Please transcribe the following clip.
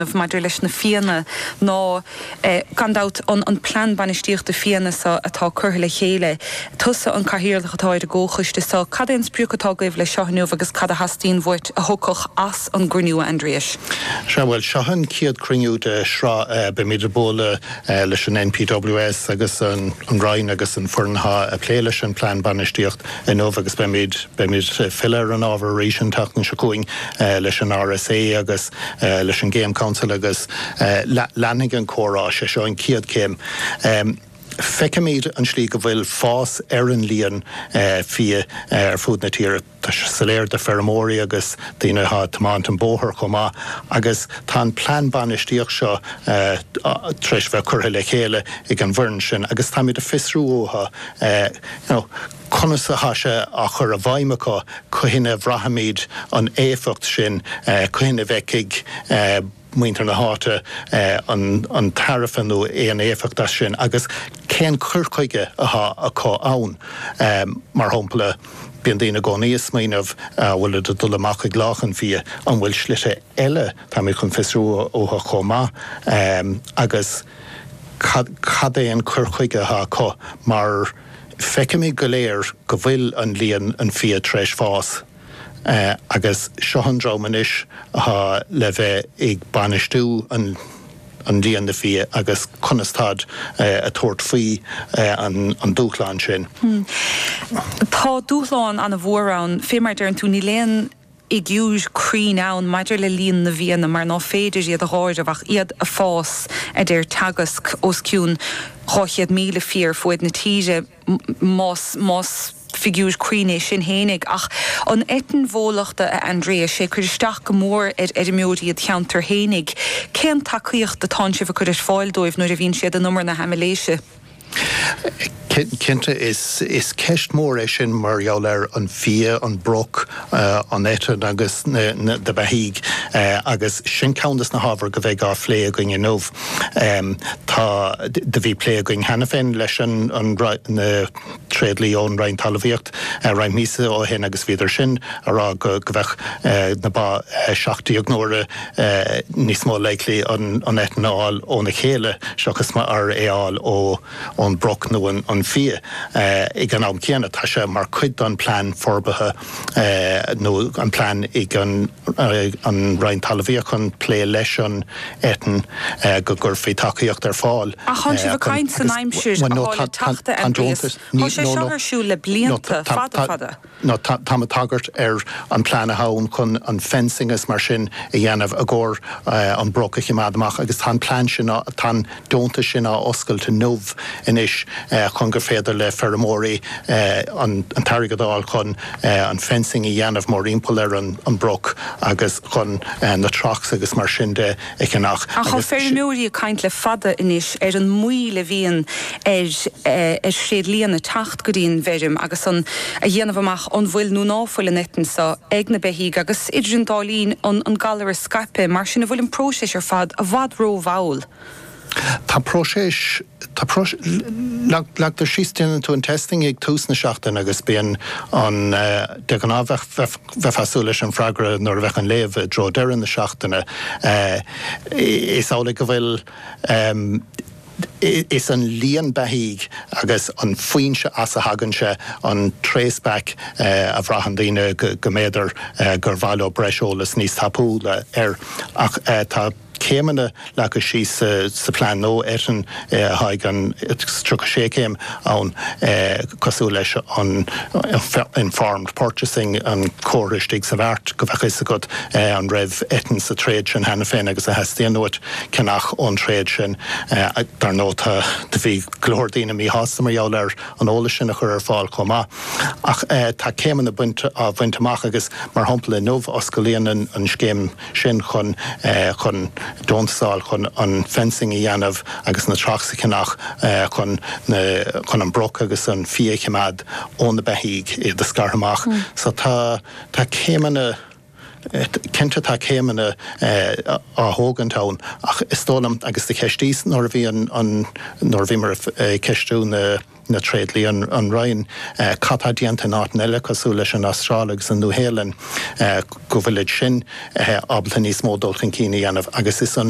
dhéanamh maidir leis na fianna ná gan dabht an plean bainistíochta fianna so atá curtha le chéile. Tusa an cathaoirleach atá ar an gcomhchoiste seo. Cad é an sprioc atá agaibh leis seo inniu agus cad a theastaíonn uait a thiocfadh as an gcruinniú, a Aindriais? Sea, bhuel, seo an chéad cruinniú de shraith. Beimid ag bualadh leis an NPWS agus an Roinn agus an foireann atá ag plé leis an bplean bainistíocht inniu agus beimid ag filleadh ar an ábhar arís an tseachtain seo chugainn leis an RSA agus leis an Game Council agus leanfaidh an comhrá. Sé seo an chéad céim. Feicimid an slí go bhfuil fás ar an líon fia ar fud na tíre. Tá sé soiléir do feirmeoirí agus daoine atá ag tiomáint an bóthar chomh maith agus tá an plean bainistíocht seo tar éis bheith curtha le chéile ag an bhfoireann sin agus táimid ag fiosrú uathu conas atá sé á chur i bhfeidhm acu, cathain a bhraithfimid an éifeacht sin, cathain a bhfeicfidh muintir na háite an tairbhe nó aon éifeacht as sin agus cén cur chuige atá acu ann. Mar shampla, bíonn daoine i gcónaí ag smaoineamh, an bhfuilid ag dul amach ag lámhach an fia, an bhfuil slite eile, táimid chun fiosrú uathu chomh maith, agus cad é an cur chuige atá acu mar. Feicimid go léir go bhfuil an líon an fia tar éis fás agus seo an dream anois atá le bheith ag bainistiú an líon na fia agus conas táid ag tabhairt faoi an dúshlán sin. Tá dúshlán ana-mhór ann, fé mar a deireann tú níl aon fhigiúir cruinn ann maidir le líon na bhfianna mar ná féidir iad a dh'áireamh ach iad ag fás, a deir Teagasc, os cionn 200 míle fia ar fuaid na tíre, más, más figiúir cruinn é sin fhéinig. Ach an eitinn bhólachta, a Aindriais, ag cur isteach go mór ar fheirmeoirí id cheantar fhéinig. Cén tacaíocht atánn sibh ag cur ar fáil dóibh nuair a bhíonn siad in umar na haimiléise? Cinnte is ceist mhór é sin mar gheall ar an bhfia, an broc, an eitinn agus na beithígh agus sin ceann de na hábhair go mbeidh á phlé againn inniu. Tá, do bhí plé againn cheana féin leis an, na, tréadlia ón Roinn Talmhaíocht roinnt míosa ó shin agus bhíodar sin ag rá go mbeadh na ba 17 n-uaire níos mó likely an eitinn a fháil óna chéile seachas mar é a fháil ón broc nó an fia. Ag an am céanna tá sé mar cuid don plean forbartha nó an plean ag an Roinn Talmhaíochta chun plé leis an eitinn go gcuirfí tacaíocht ar fáil chun. Ach tháinig sibh ag caint san aimsir a tháinig an Teachta Aindrias, tá sé seo ar siúl le blianta fada fada. Nó táim ag tagairt ar an plean atá ann chun an fencing is mar sin a dhéanamh i gcomhair an broc a choimeád amach agus tá an plean sin, tá an. deontas sin á oscailt inniu anois chun gur féidir le feirmeoirí an t-airgead a fháil chun an fencing a dhéanamh mórthimpeall ar an broc agus chun na troughs agus mar sin de a cheannach. Ach tá feirmeoirí ag caint le fada anois ar an moill a bhíonn ar thréidlianna teacht go dtí an bhfeirm agus an a dhéanamh amach an bhfuil nó ná fuil an eitinn seo ag na beithígh agus idir an dá linn an galar ag scaipeadh. Mar sin an bhfuil an próiseas ar fad i bhfad ró-mhall? Tá próiseas, tá próiseas, leagtar síos, déanann tú an testing ag tús na seachtaine agus bíonn an, de ghnáth bheadh, bheifeá ag súil leis an freagra nuair a bheadh an léamh i dtreo deireadh na seachtaine. Is amhlaidh go bhfuil, is an líon beithígh agus an foinse as a thagann sé an trace back a bhraitheann daoine go mb'fhéidir gur mhaith leo breis eolas níos tapúla air ach tá, céimeanna leagtha síos sa phlean nua eitinn, tá an 36 céim ann cosúil leis an informed purchasing an comhartha istigh sa mhart go bheadh fhios agat an raibh eitinn sa tréad sin cheana féin agus a theastaíonn uait ceannach ón tréad sin. Dar ndóigh tá, do bhí go leor daoine míshásta mar gheall ar an eolas sin a chur ar fáil chomh maith. Ach tá céimeanna bainte á bhaint amach agus mar shampla inniu oscalaíonn an scéim, sin chun chun deontas a fháil chun an fencing a dhéanamh agus na troughs a cheannach chun na chun an broc agus an fia a choimeád ó na beithígh iad a scaradh amach so tá tá céimeanna cinnte tá céimeanna á thógaint ann ach is dóigh liom agus do cheistíos nuair a bhí an an nuair a bhíomar ag ceistiú na na tréidlia, an roinn cad atá déanta in áiteanna eile cosúil leis an Astráil agus an Nua-Shéalainn, go bhfuilid sin ábalta níos mó dul chun cinn a dhéanamh agus is ionann